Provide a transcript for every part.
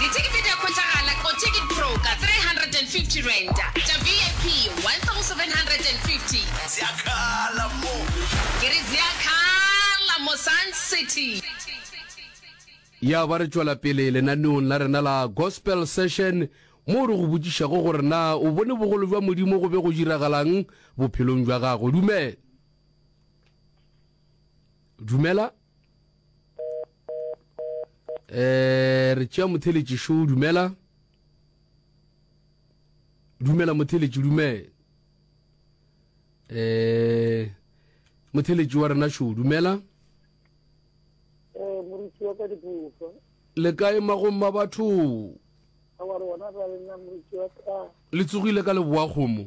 Dithekete di a hwetšagala ko Ticket Pro ka R350, tša VIP R1,750. Ke re zia khala mo Sun City. Ya ba re tšwela pele lenaneong la rena la Gospel Session moo re go botšišago gore na o bone bogolo bja Modimo go be go diragalang bophelong bja gago. Dumela. Dumela. eh re tšea motheletši šo dumela dumela motheletši dumela eh motheletši wa rena šo dumela eh, le kae magong ma batho le tsogile ka leboa kgomo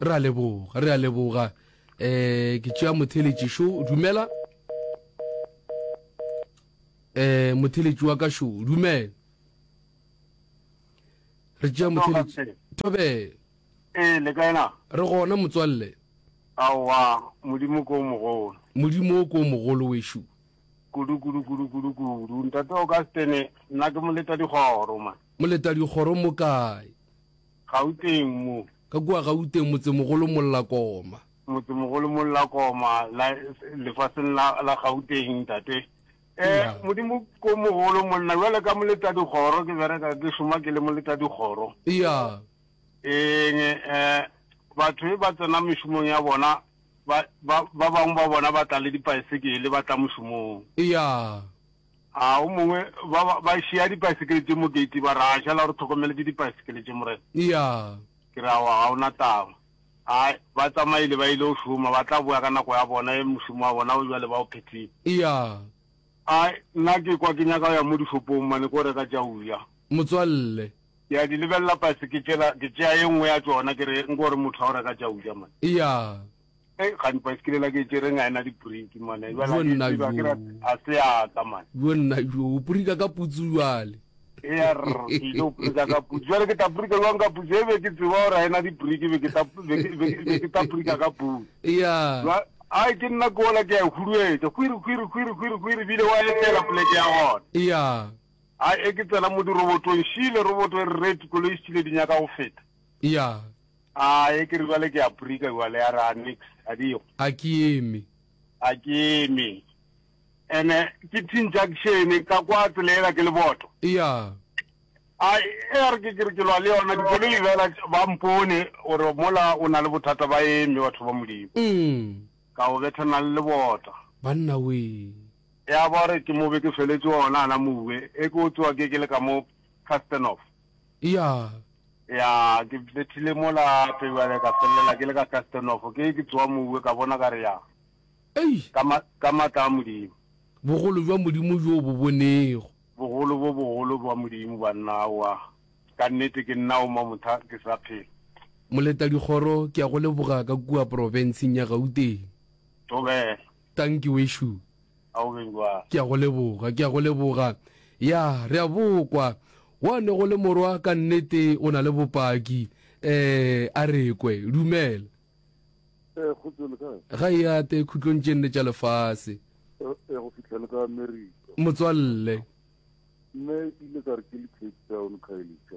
re a leboga re a leboga um ke tšea motheletši šo dumela um motheletši wa ka šo dumela re tšea motheletši thobe ee le kae na re gona motswalle aowa modimo ko mogolo modimo o ko mogolo wešo kudu kudu kudu kudu kudu ntate o ka stene nna ke moleta dikgoro ma moleta dikgoro mo kae Gauteng mo. Ka kua Gauteng, motsemogolo Mollakoma. Motsemogolo Mollakoma, la, lefaseng la, la Gauteng, ntate. Eh, yeah. Modimo ko mogolo monna, jwale ka moleta dikgoro, ke bereka, ke šoma ke le moleta dikgoro. Iya. Yeah. Eng, eh, batho ba tsena mešomong ya bona, ba, ba, ba bangwe ba bona ba tla le dipaesekele, ba tla mošomong. Iya. Yeah. A o mongwe, ba, ba, ba šea dipaesekele tše mo gate, ba re, A šala o re tlhokomeletse dipaesekele tše, Morena? Eya. Ke re, Aowa, ga o na taba. A ba tsamaile, ba ile go šoma, ba tla boya ka nako ya bona, e, mošomo wa bona wo bjale ba o phethile. Eya. A nna ke kwa ke nyaka go ya mo dishopong mane ko reka tša go ja. Motswalle. Ke a di lebelela paesekele tšela, ke tšea e nngwe ya tšona, ke re, Nko re motho a go reka tša go ja mane. Eya. Hey, ga di baesekele la ke tšereng a ena dibriki mane Yo jala nna ke yo. ke ra a se aka mane yo nna yo o porika ka putsu jale ya rr ke ile go brika ka putsu jale ke tla brika jwang ka putsu e be ke tseba gore a ena dibriki be ke tla be ke- be ke- be ke tla brika ka putsu ya Jwa- ai ke nna ke ola ke a e huruetsa kwiri kwiri kwiri kwiri kwiri bile wa etela poleke ya gona ya a e ke tsena mo dirobotong šile roboto e re reti koloi e šile di nyaka go feta ya A e ke re bjale ke a prika bjale ya ra nix a di go. A ke eme. A ke eme. Ene ke tin junction ka kwa tselela ke leboto. Ya. A e re ke ke re ke lwa le yona di bolo ibela ba mpone gore mola o na le bothata ba eme batho ba modimo. Mm. Ka o bethana le lebota. Banna wee. Ya ba re ke mo be ke feletse ona ana mowe e ke o tsoa ke ke le ka mo Castanov. Eya. Ya ke bethile mola pejwale ka fellela ke le ka kastenofo ke ke tsoa mouwe ka bona ka re ya Ei! ka ma ka matla a modimo Bogolo jwa Modimo jo bo bonego. bogolo bo bogolo bwa modimo banna aowa ka nnete ke nna o mamotha ke sa phela Moletadikgoro ke ya go leboga ka kua porofenseng ya Gauteng. thobela. Tanki wešo. Ga o beng jwalo. Ke a go leboga, ke a go leboga. Ya, re a bokwa. Gwa ne go le morwa ka nnete, o na le bopaki. Ee, a re kwe. Dumela. Ee, kgotso, le kae? Ga e ate khutlong tše nne tša lefase. Ee, go fihla le ka Amerika. Motswalle. Mme ke ile ka re ke le Cape Town, Khayelitsha.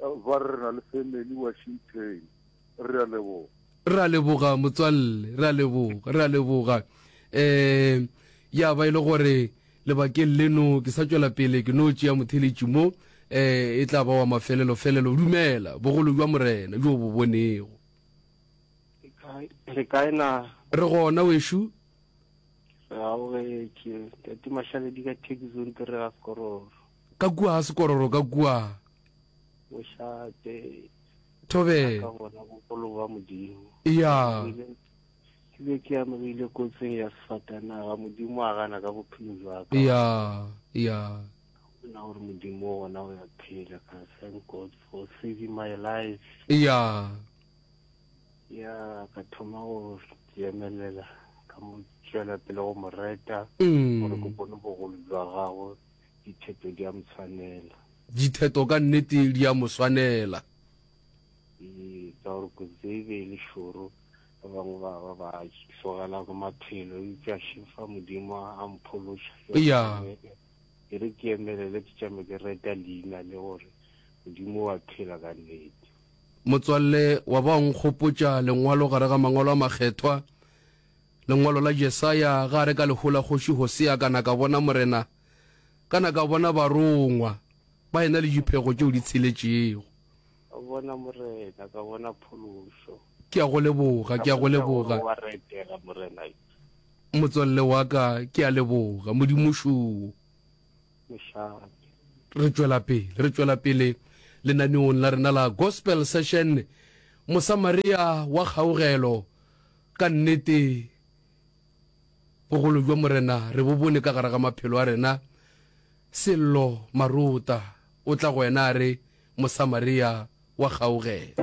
Ba re re na le family Washington. Re a leboga. Re a leboga motswalle, re a leboga, re a leboga. Um, ya ba e le gore lebakeng leno ke sa tšwela pele ke no tšea motheletši mo, um, e tla ba wa mafelelo-felelo. Dumela, bogolo bja Morena bjo o bo bonego. Le kae na? Re gona wešo. Re arogetše, Tate Mashaledi ka Thekiso o ntirela sekororo. Ka kua ga sekororo ka kua. O šate. Thobe. Ka bona bogolo ba Modimo. Ya. Ke be ke amegile kotsing ya sefatanaga, Modimo a gana ka bophelo jwa ka. Ya, ya. Bona gore Modimo o gona o ya phela ka thank God for saving my life. Ya. Ya, ka thoma go jemelela ka mo tšwela pele go mo reta gore ke bone bogolo jwa gagwe. Ditheto di a mo tshwanela. Ditheto ka nnete di a mo swanela. Ee, ka gore kotsi e be e le šoro. Ba bangwe ba ba ba tlogela go maphelo, eupša še fa Modimo a mphološa. Eya. Ke re ke emelele ke tšame ke reta leina le gore Modimo o a phela ka nnete. Motswalle, wa ba wa nkgopotša lengwalo gare ga Mangwalo a Makgethwa. Lengwalo la Jesaya, Ga re ka lehu la kgoši Hosea ka na ka bona Morena, ka na ka bona barongwa ba yena le diphego tšeo di tsheletšego. Ka bona Morena, ka bona phološo. Ke a go leboga, ke a go leboga. Wa re etela, Morena yo. Motswalle wa ka, ke a leboga, Modimo šoo. Mošate. Re tšwela pele, re tšwela pele lenaneong la rena la Gospel Session, Mosamaria wa kgaogelo. Ka nnete, bogolo bja Morena re bo bone ka gare ga maphelo a rena. Sello Marota o tla go wena a re, Mosamaria wa kgaogelo.